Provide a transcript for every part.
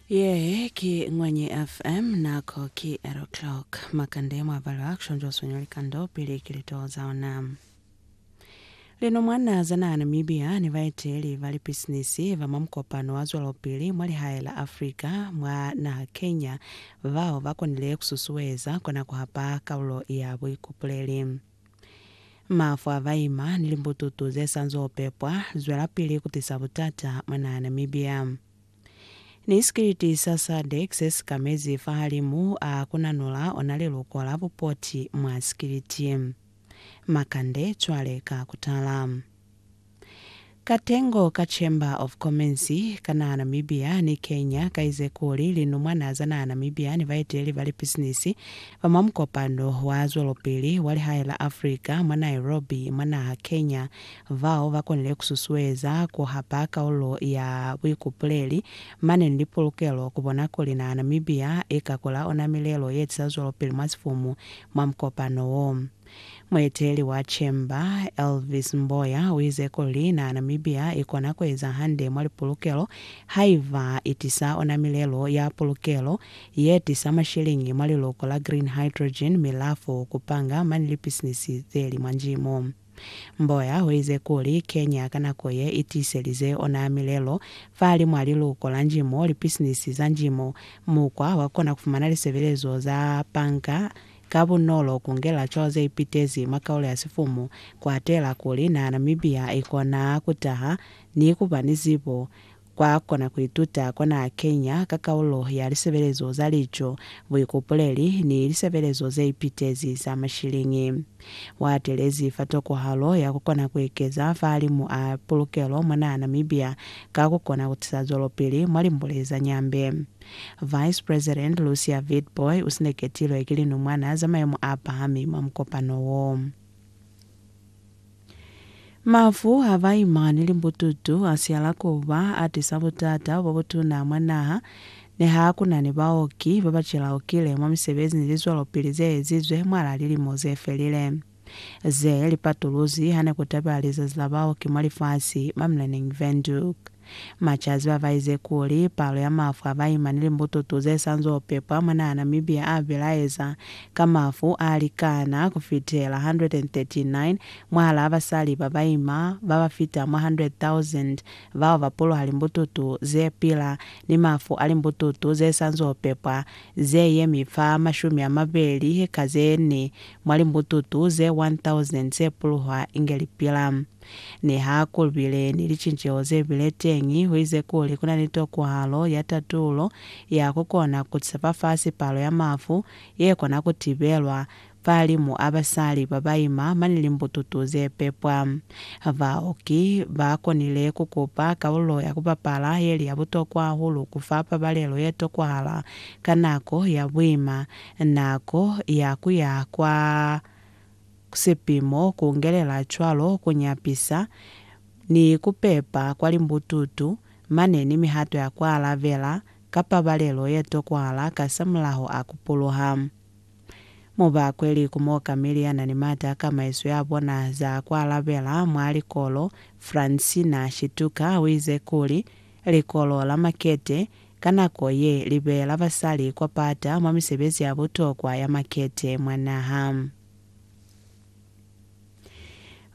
Yee ki Ngwanyi FM, nako ki 8 o'clock. Makande mwa balwa action jo swinya likando pili ki litoo za ona. Lino mwana za naha Namibia ni baeteli ba lipisinisi ba mwa mukopano wa zwelopili mwa lihae la Africa mwa naha Kenya bao ba konile ku susueza kona ku hapa kalulo ya buikupuleli. Mafu a baima ni limbututu ze sa nzo pepwa zwelapili ku tisa butata mwa naha Namibia. Ni sikiliti sa SADC se si kamezi fahalimu a ku nanula ona liluko la bupoti mwa sikiliti. Makande cwale ka ku tala. Katengo ka Chamber of Commerce ka naha Namibia ni Kenya kaize kuli linumwana za naha Namibia ni baeteleli ba lipisinisi ba mwa mukopano wa zwelopili wa lihae la Africa mwa Nairobi mwa naha Kenya bao ba konile ku susueza ku hapa kaulo ya buikupuleli mane ni lipulukelo ku bona kuli naha Namibia i ka kula ona milelo ye tisa zwelopili mwa sifumu mwa mukopano wo. Mueteli wa Chamber, Elvis Mboya, uize kuli na Namibia ikona kueza hande mwa lipulukelo haiba itisa ona milelo ya pulukelo yetisa mashiliñi mwa liluko la green hydrogen mi lafu kupanga mani lipisinisi zeli mwa Njimu. Mboya uize kuli Kenya ka nako ye itiiselize ona milelo fahalimwa a liluko la Njimu, lipisinisi za Njimu, mukwa wa kona kufumana lisebelezo za panga Ka bunolo ku ngela cwalo ze ipitezi mwa kaulo ya sifumu ku atela kuli na Namibia i kona ku taha ni ku ba ni zibo kwa kona ku ituta kwa naha Kenya ka kaulo ya lisebelezo za lico, buikupuleli, ni lisebelezo ze ipitezi za mashiliñi. U atelezi fa tokohalo ya ku kona ku ekeza fahalimu a pulukelo mwa naha Namibia ka ku kona ku tisa zwelopili mwa limbule za Nyambe. Vice President Lucia Witbooi usineketilwe ki linumwana za mayemo aapahami mwa mukopano wo. Mafu a baimani ni bututu asihala kuba atisa butata bobutuna mwa naha, niha kuna ni baoki babacelaukile mwa misebezi ni lizwelopili zeezizwe mwalaa lilimo zefelile. Ze li patuluzi hane ku tabela lizazi la baoki mwa lifasi, mwa Mlenneng Windhoek. Machazi ba baize kuli, palo ya mafu a baima ni limbututu ze sa nz'o pepwa mwa naha Namibia a bilaeza ka mafu a likana ku fitela 139 mwahalaa basali ba baima ba ba fita mwa 100,000 bao ba puluha limbututu ze pila ni mafu a limbututu ze sa nz'o pepwa ze yemi fa mashumi a mabeli ka ze ne mwa limbututu ze 1,000 ze puluhwa inge li pila. Niha ku bile ni licinceho ze bile teñi, ho ize kuli ku na ni tokwahalo ya tatulo ya ku kona ku tisa fafasi palo ya mafu ye kona ku tibelwa, fahalimu a basali ba ba ima mane limbututu ze pepwa. Baoki ba konile ku kupa kalulo ya ku bapala ye li ya butokwa hahulu ku fa pabalelo ye tokwahala ka nako ya buima nako ya ku ya kwa sepimo ku ngelela cwalo ku nyapisa ni ku pepa kwa limbututu, mane ni mihato ya ku alabela ka pabalelo ye tokwahala kasamulaho a ku puluha. Mu ba kwe liku mo Camille ya na ni mata a kamaiso ya bona za ku alabela mwa likolo, Francina Shituka, o ize kuli, Likolo la makete ka nako ye li beela basali kwa pata mwa misebezi ya butokwa ya makete mwa naha.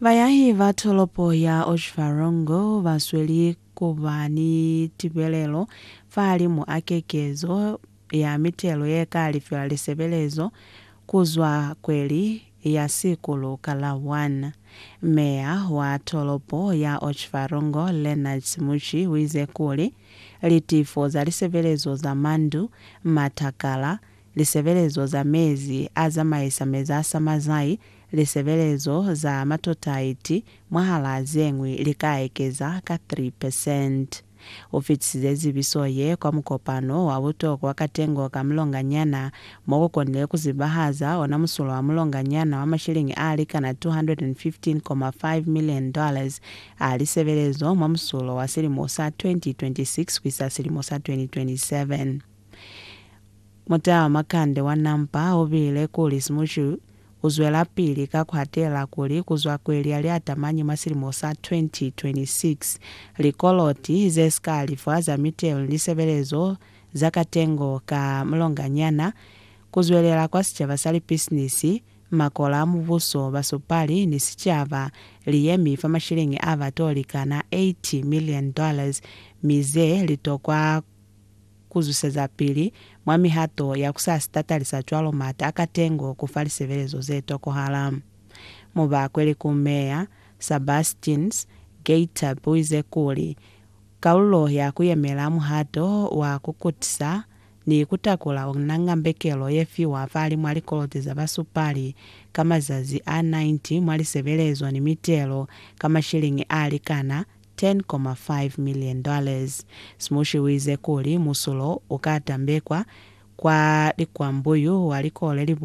Bayahi ba tolopo ya Otjiwarongo ba sweli ku ba ni tibelelo fahalimu a kekezo ya mitelo ye ka lifiwa lisebelezo ku zwa kweli ya Sikulu Kalawan. Meya wa tolopo ya Otjiwarongo Leonard Simuchi wize kuli, Litifo za lisebelezo za mandu, matakala, lisebelezo za mezi a zamaisa mezasa mazai, lisebelezo za matotaiti mwahala zeñwi li ka ekeza ka 3 percent. U fitisize zibiso ye kwa mukopano wa butokwa wa katengo ka mulonganyana, mo ku konile ku zibahaza ona musulo wa mulonganyana wa mashilingi a likana 215.5 million dollars a lisebelezo mwa musulo wa silimo sa 2026 ku isa silimo sa 2027. Muta wa makande wa nampa u bile kuli Simushu u zwelapili ka ku hatela kuli ku zwa kweli ya liatamanyi mwa silimo sa 2026, likoloti ze si ka alifwa za mitelo ni lisebelezo za katengo ka mulonganyana, ku zwelela kwa sicaba sa lipisinisi, makola a mubuso, basupali, ni sicaba, li yemi fa mashilingi a ba to likana 80 million dollars, mi ze li tokwa Ku zwisezapili mwa mihato ya ku sa sitatalisa cwalo m'ata a katengo ku fa lisebelezo ze tokohala. Mu ba kweli ku Meya Sabastins Geiter buize kuli, Kalulo ya ku yemela muhato wa ku kutisa ni ku takula ona nga mbekelo ye fiwa fali mwa likolote za basupali ka mazazi a 90 mwa lisebelezo ni mitelo ka mashilingi a likana 10.5 million dollars. Smushi uize kuli musulo uka tambekwa kwa likwambuyu wa likole li